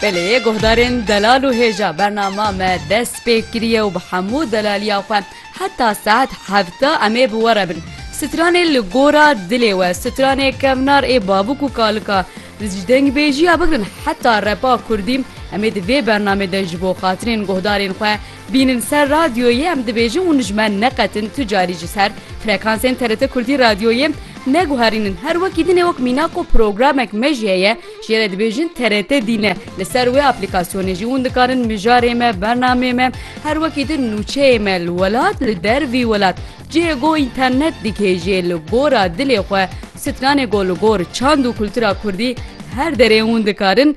Belê guhdarên delal û hêja bernama me dest pê kiriye û bi hemû delaliya xwe heta saet hevta em ê bi we re bin. Stranê li gora dilê we, stranê kevnar ê babûk û kalika ji dengbêjiya bigirin heta repa kurdî em ê di vê bernamê de ji bo xatirên guhdarên xwe, Bînin ser radyoyê em dibêjin û nijmen neqetin tu carî ji ser frekansên TRT Kurdî radyoyê neguherînin. Her wekî din e wek mîna ku programek mejîye ye jê re dibêjin TRT dîn e. Li ser wê aplîkasyonê jî hûn dikarin mijarê me, bernameyê me, her wekî din nûçeyê me li welat, li dervî welat cihê go înternet dikê jê li gora dilê xwe, stranê go li gor çand û kultura kurdî her derê hûn dikarin.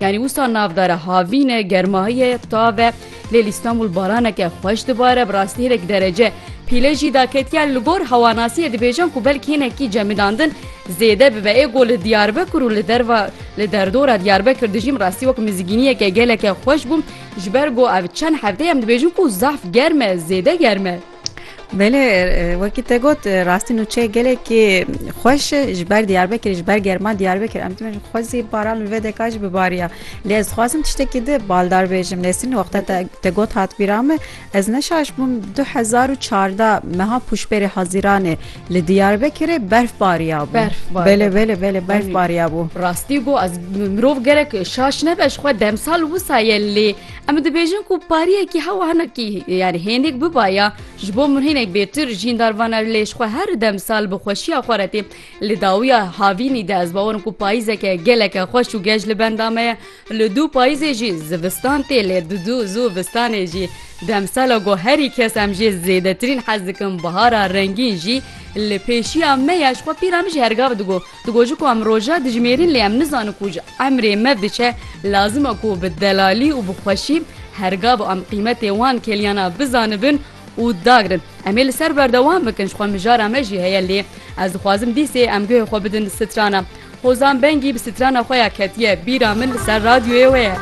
Yanî wisa navdare havîne germahiyê tave lê li Îstanbul baraneke xweş dibare bi rastî hinek derece pîle jî da ketiye li gor hewanasiyê dibêjin ku belk hinekî cemidandin zêde bibe ê ku li Diyarbekir û li derva li derdora Diyarbekir dijîm rastî wek mizgîniyeke geleke xweş bû ji ber ku ev çend hefteyem dibêjin ku zehf germe zêde germe. Belê wekî te got rastî nûçeyê gelekî xweş e ji ber Diyarbekirê ji ber germa Diyarbekir em dibêjin xwezî baran li vê deka jî bibariya lê ez dixwazim tiştekî di baldar bêjim lêsîn wexta te te got hat bîra min ez neşaş bûm du hezar û çarda meha pûşberê Haziranê li Diyarbekirê berf bariya bû berf belê belê belê berf bariya bû rastî got ez mirov gerek şaş nebe ji xwe demsal wisa ye lê Em dibêjin ku pariyekî hewa hinekî yani hênik bibaya ji bo min hênek bêtir jîndar vana lêş xwe her dem sal bi xweşiya xwe retê li dawiya havînî de ez bawerim ku payîzeke geleke xweş û gej li benda me ye li dû payîzê jî zivistan tê lê di dû zû vistanê jî demsala ku herî kes em jê zêdetirîn hez dikin bihara rengîn jî li pêşiya me ya ji xwe pîra min jî hergav digot Digoji ku em roja dijimêrin lê em nizanin ku ji emrê me diçe lazim e ku bi delalî û bi xweşî her gava em qîmetê wan kêliyana bizanibin û dagrin. Em ê li ser berdewam bikin ji xwe mijara me jî heye lê ez dixwazim dîsê em guhê xwe bidin strana. Hozan Bengî bi strana xwe ya ketiye bîra min li ser radyoyê wê ye.